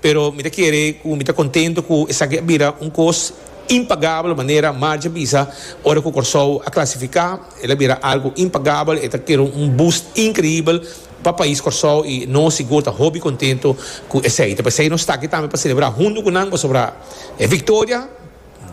Pero mi ta kere ku mi ta kontento ku esaki a bira un kos impagabel manera Margie a bisa ora ku Kòrsou a klasifiká. El a bira algu impagabel, e ta kere un boost inkreibel pa pais Kòrsou i nos sigur ta hopi kontento ku esei. Ta p'esei nos ta aki tambe pa selebrá huntu ku nan pasobra e viktoria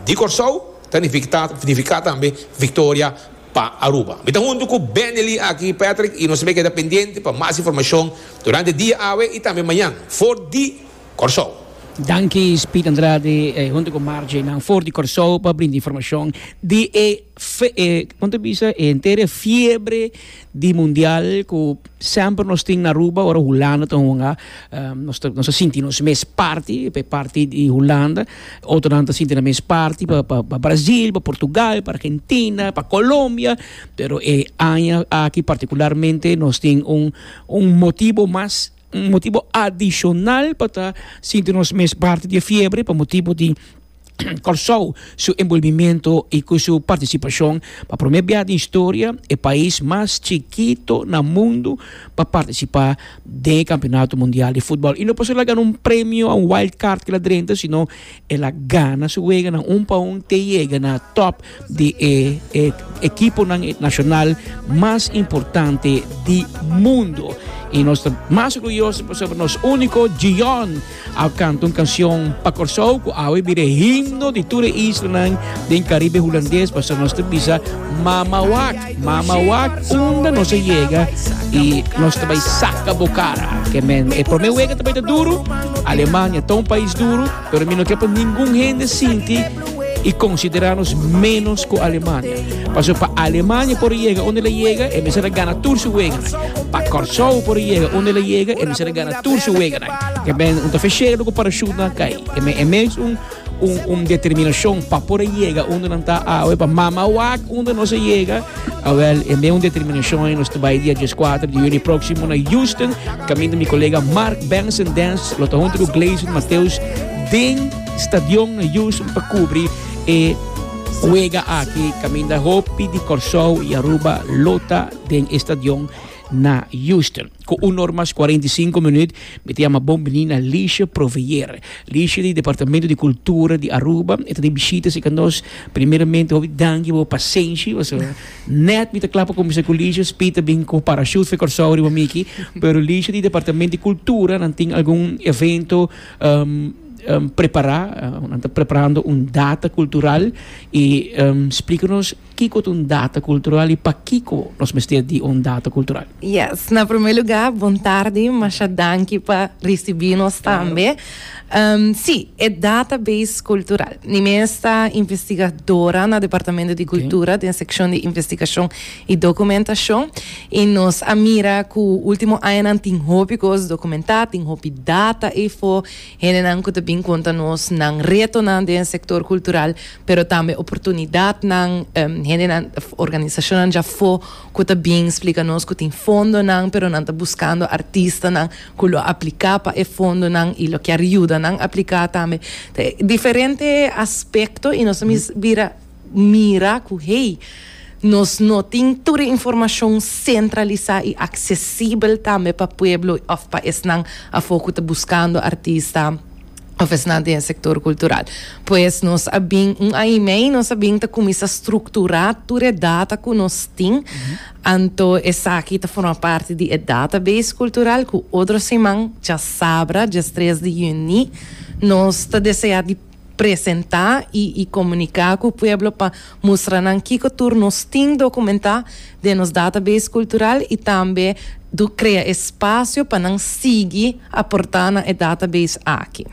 di Kòrsou ta nifiká tambe viktoria pa Aruba. Mi ta huntu ku Benelli aki, Patrick, i nos tambe keda pendiente pa mas informashon durante dia awe i tambe mañan for di Kòrsou. Danki Speed Andrade e huntu ku Margie nan for di Kòrsou pa brinda informashon di e kon ta bisa e entere fiebre di mundial ku semper nos tin na Aruba ora Hulanda ta hunga nos ta sinti nos mes parti, e parti di Hulanda. Otronan ta sinti nan mes parti pa pa Brasil, pa Portugal, pa Argentina, pa Colombia, pero e aña aki particularmente nos tin un un motibo mas, un motibo adicional pa ta sinti nos mes parti di e fiebre pa motibo di Kòrsou su enbolbimiento i ku su partisipashon. Pa promé biaha den historia e pais mas chikito na mundu pa partisipá. den e Kampionato Mundial di Futbòl. I no pasó el a gana un premio, un wild card ki la drenta, sino el a gana su weganan un pa un te yega na top di e, e ekiponan nashonal mas importante di mundo. I nos ta mas orguyoso pasobra nos úniko Gion A canta un cancion pa Corsou cu awe bira e himno di tur e islanan den Caribe Hulandes pasobra nos ta bisa Mama wak, mama wak unda nos a yega y nos ta bay saca bo cara. Kiermen e prome wega ta bay ta duro, Alemania ta un pais duro pero mi no kier pa ningun hende sinti y considera nos menos cu Alemania. Pasobra pa Alemania por a yega unda el a yega e mester a gana tur su weganan. Pa Corsou por a yega unda el a yega e mester a gana tur su weganan. Ke men un ta fe shega loko parachute nan a kai. Ke men e mes un un un determinacion pa por a yega unda nan ta awe pa mama wak unda nos a yega. Awel e men un determinacion nos ta bai dia dies kuater di juni proximo na Houston kaminda mi kolega Mark Benson Dance lo ta hunto ku Gleison Mateus den stadion na Houston pa kubri e wega aki kaminda hopi di Kòrsou i Aruba lo ta den e stadion na Houston. Ku un or mas kuarenta i sinku minüt mi ta yama bon bini na Liesje Provveer. Liesje di Departamento di Kultura di Aruba e ta den bishita si ka nos. Primeramente hopi danki pa bo pasenshi paso nèt mi ta kla pa kuminsá ku Liesje Speed ta bin ku parashut for Kòrsou riba mi aki. Pero Liesje di Departamento di Kultura nan tin algun evento prepará. Nan ta preparando un data kultural i splika nos. Kiko ta un data kultural i pakiko nos mester di un data kultural? Yes, na promé lugá bon tardi, masha danki pa risibí nos tambe. Sí, e data beis kultural. Mi mes ta investigadora na Departamento di Kultura den sekshon di Investigashon i Dokumentashon i nos a mira ku último añanan tin hopi kos dokumentá, tin hopi data ei for, hendenan ku ta bin konta nos nan retonan den sektor kultural. pero tambe oportunidatnan, hendenan, organisacionnan dja afo cu ta bin splica nos cu tin fondonan, pero nan ta buscando artistanan cu lo aplica pa e fondonan y lo kier yuda nan aplica tambe. Ta diferente aspecto y nos ta mester bira mira cu hey, nos no tin tur e informacion centralisa y accesibel tambe pa pueblo of pa esnan afo cu ta buscando artista. of esnan den e sector cultural. Pues nos a bin un aña y mei nos a bin ta cuminsa structura tur e data cu nos tin, anto esaki ta forma parti di e database cultural cu otro siman, diasabra diestres di juni, nos ta desea di presenta y y comunica cu pueblo pa. Mustra nan kiko tur nos tin dokumentá den nos database kultural i tambe do krea espasio pa nan sigui aportá na e database aki.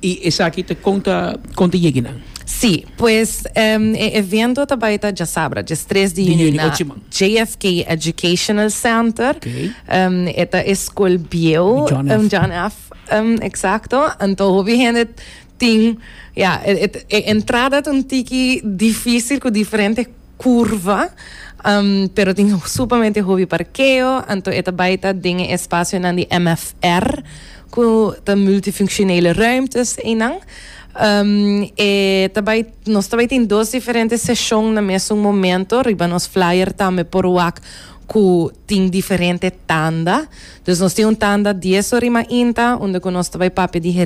I esaki ta kon ta kon ta yegi nan? Sí, pues e evento ta bai ta djasabra, djes tres di yüni, na JFK Educational Center. E ta e skol bieu, John F. John F. Exacto. Anto hopi hende Tin, ya, e entrada ta un tiki difícil cu diferente curva, pero tin supamente hopi parkeo, anto e ta bai ta den e espacionan di MFR, cu ta multifunctionele ruimtes einan. E ta bai, nos ta bai tin dos diferente seshon na mesun momento, riba nos flyer tambe por wak cu tin diferente tanda. Dus nos tin un tanda dies ora y mainta, unda cu nos ta bai papia di.